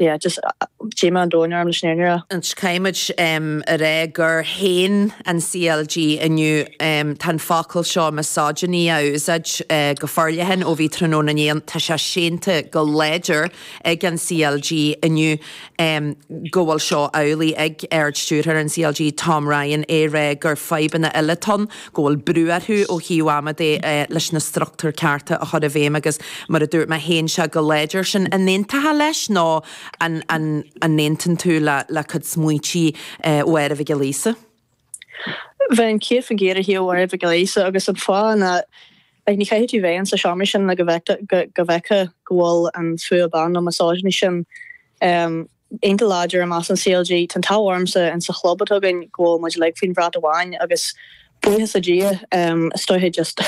yeah just díomá an domhain orm leis an fhírinne a inse. Caithfimid a rá gur shéan an CLG inniu tá an focal seo misogyny á úsáid go forleathan ó bhí tráthnóna inné ann, tá sé séanta go láidir ag an CLG inniu go bhfuil seo amhlaidh ag Ard-Stiúrthóir an CLG Tom Ryan ag rá gur fadhbanna eile atá ann go bhfuil brú orthu ó thaobh ama de leis na struchtúir cearta a chur i bhfeidhm agus mar a dúirt mé shéan sé go láidir sin. An aontófá leis nó an an an n-aontaíonn tú le le cuid smaointí Mháire Mhic Giolla Íosa? Bheinn céad faoin gcéad ar thaobh Mháire Mhic Giolla Íosa agus an fáth ná eh ní chaithfidh tú bheith insa seomra sin le go bhfeicfeá go bhfuil an fuath ban nó misogyny sin um, iontach láidir i measc an CLG. Tá an t-ádh ormsa insa chlub atá againn go bhfuil muid uilig faoin bhrat amháin agus buíochas le Dia, is dóiche just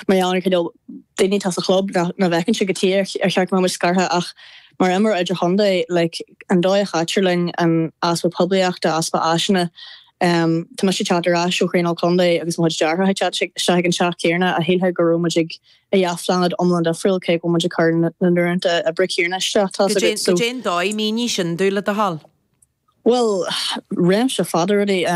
mar gheall ar an cineál daoine atá sa chlub, nach bhfeiceann siad cad chuige ar cheart go mbeadh muid scartha ach mar imreoir idirchontae, like an dóigh a chaitear linn, an easpa poiblíochta, easpa áiseanna. Tá mise ag teacht ar ais ó thraenáil contae agus mo chuid deartháireacha ag teacht isteach ag an teach céanna agus shílfeá go raibh muid ar dhá phláinéad iomlán difriúil cé go bhfuil muid ag cur na n-uaireanta díreach céanna isteach, tá sé go. Cad é an dóigh? Mínigh sin dúinn le do thoil? Bhuel, réimse fada rudaí,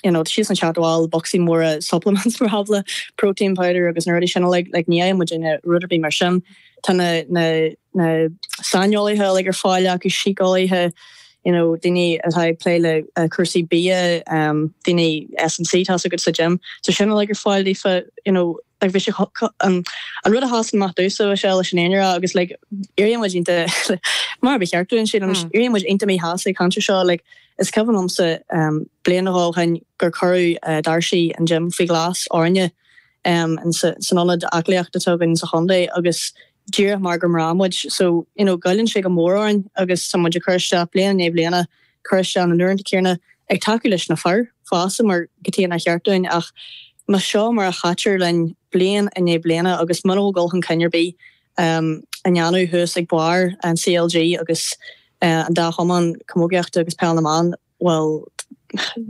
you know, siadsan ag teacht abhaile le bocsaí móra supplements mar shampla, protein powder agus na rudaí sin uilig, like ní fhaigheann muid aon rud ar bith mar sin. Tá na, na, na saineolaithe uilig ar fáil acu, síceolaithe, you know, daoine atá ag plé le cúrsaí bia, daoine SNC, tá a fhios agat sa gym, tá sin uilig ar fáil daofa, you know, Like bhí sé an rud a shásann amach domhsa is mó leis an fhírinne a rá agus like éiríonn muid iontach mar ba cheart dúinn sin anois éiríonn muid iontach míshásta ag caint ar seo like is cuimhin liomsa bliain nó dhó ó shoin gur cuireadh doirse an gym faoi ghlas orainne in san ionad aclaíochta atá againn sa chontae agus díreach mar gur mná muid so you know goilleann sé go mór orainn agus tá muid ag cur isteach bliain i ndiaidh bliana cur isteach na n-uaireanta céanna ag tacú leis na fir fosta mar cad chuige nár cheart dúinn ach más seo mar a chaitear linn bliain i ndiaidh bliana agus mura bhfuil dul chun cinn ar bith á dhéanamh thuas ag barr an CLG agus an dá chumann camógaíochta agus peil na mban, bhuel,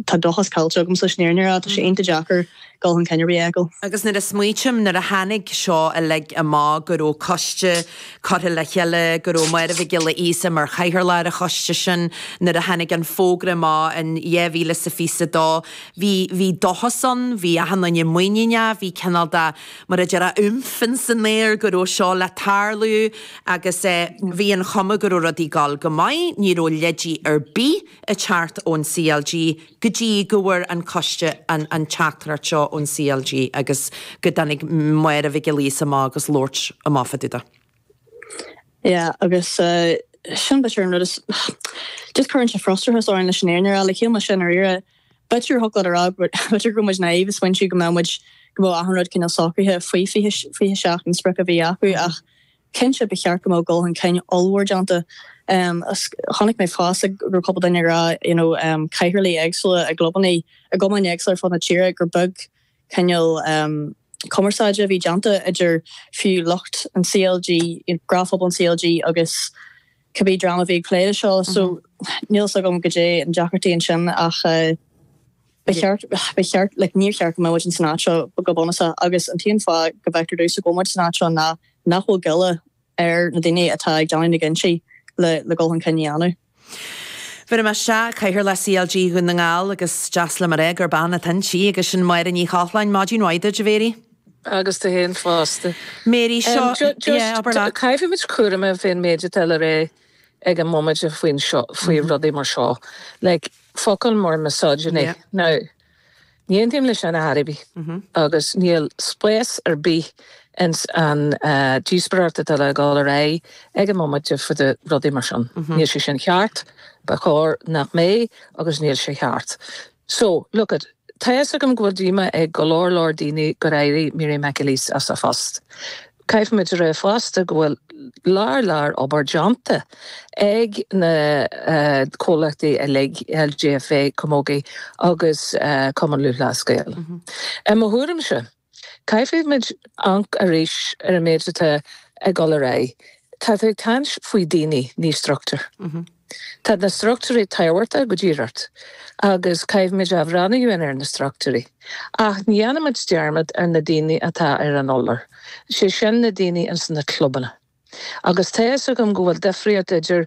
tá dóchas caillte agamsa leis an fhírinne a rá. Tá sé iontach deacair. dul chun cinn ar bith a fheiceáil. Agus nuair a smaoitím, nuair a tháinig seo uilig amach, go raibh coiste curtha le chéile, go raibh Máire Mhic Giolla Íosa mar chathaoirleach ar an choiste sin, nuair a tháinig an fógra amach in 2022, bhí, bhí dóchas ann, bhí achan duine muiníneach, bhí cineál de, mar a déarfá, oomph ins an aer go raibh seo le tarlú agus eh bhí an chuma go raibh rudaí ag dul go maith, ní raibh leide ar bith ag teacht ón CLG, go dtí go bhfuair an Coiste an teachtaireacht seo ón CLG agus go dtáinig Máire Mhic Giolla Íosa amach agus gur labhair amach fá dtaobh de. Yeah agus sin b'fhéidir an rud is just cuireann sé frustrachas orainn leis an Éirinn ar fháil le chéile mar sin ar iarraidh. B'fhéidir thiocfadh leat a rá go mb'fhéidir go raibh muid naív ag smaointiú go mbeadh muid go mbeadh achan rud cineál socraithe faoi 27 an sprioc a bhí acu ach Cinnte, ba cheart go mbeadh dul chun cinn ollmhór déanta. um chonaic mé fosta go raibh cúpla duine ag rá you know cathaoirligh éagsúla i gclubannaí i gcumainn éagsúla ar fud na tíre gur beag cineál cumarsáide a bhí déanta idir fiú lucht an CLG, you know gnáthphobal an CLG agus. cibé dream a bhí ag plé leis seo so níl fhios agam goidé na deacrachtaí ansin ach ba cheart, ba cheart, like níor cheart go mbeadh muid in san áit seo go bunúsach agus an t-aon fáth go bhfeictear domhsa go bhfuil muid san áit seo ná nach bhfuil goile ar na daoine atá ag déanamh na gcinntí le le dul chun cinn a dhéanamh. Bhéarfaidh mé isteach cathaoirleach CLG Dhún na nGall agus deas liom a rá gurb bean atá inti agus sin Máire Ní Chochláin, maidin mhaith duit a Mary. agus duit féin fosta. Mary, Seo, yeah, abair Just leat. caithfimid cúramach a bheith faoin méid atá le rá ag an móimint faoin seo, faoi rudaí mar seo. Like focail mar misogyny. Yeah. Now, ní aontaím le sin ar bith agus níl spás ar bith ins an díospóireacht atá ag dul ar aghaidh ag an móimint faoi rudaí mar sin. Níl sé sin cheart, ba chóir nach mbeadh agus níl sé cheart. So, look it, tá a fhios agam go bhfuil díomá ag go leor leor daoine gur éirigh Mary McAleese as a post. Caithfimid a rá fosta go bhfuil lear lear obair déanta ag na comhlachtaí uilig, LGFA, Camogie agus Cumann Lúthchleas Gael. I mo thuairimse. Caithfidh muid amharc arís ar an méid atá ag dul ar aghaidh. Tá tú ag caint faoi daoine, ní struchtúir. Tá na struchtúirí tábhachtach go díreach agus caithfimid ag breathnú ar na struchtúirí. Ach ní dhéanfaimid dearmad ar na daoine atá ar an urlár, sé sin na daoine ins na clubanna. Agus tá fhios agam go bhfuil difríocht idir.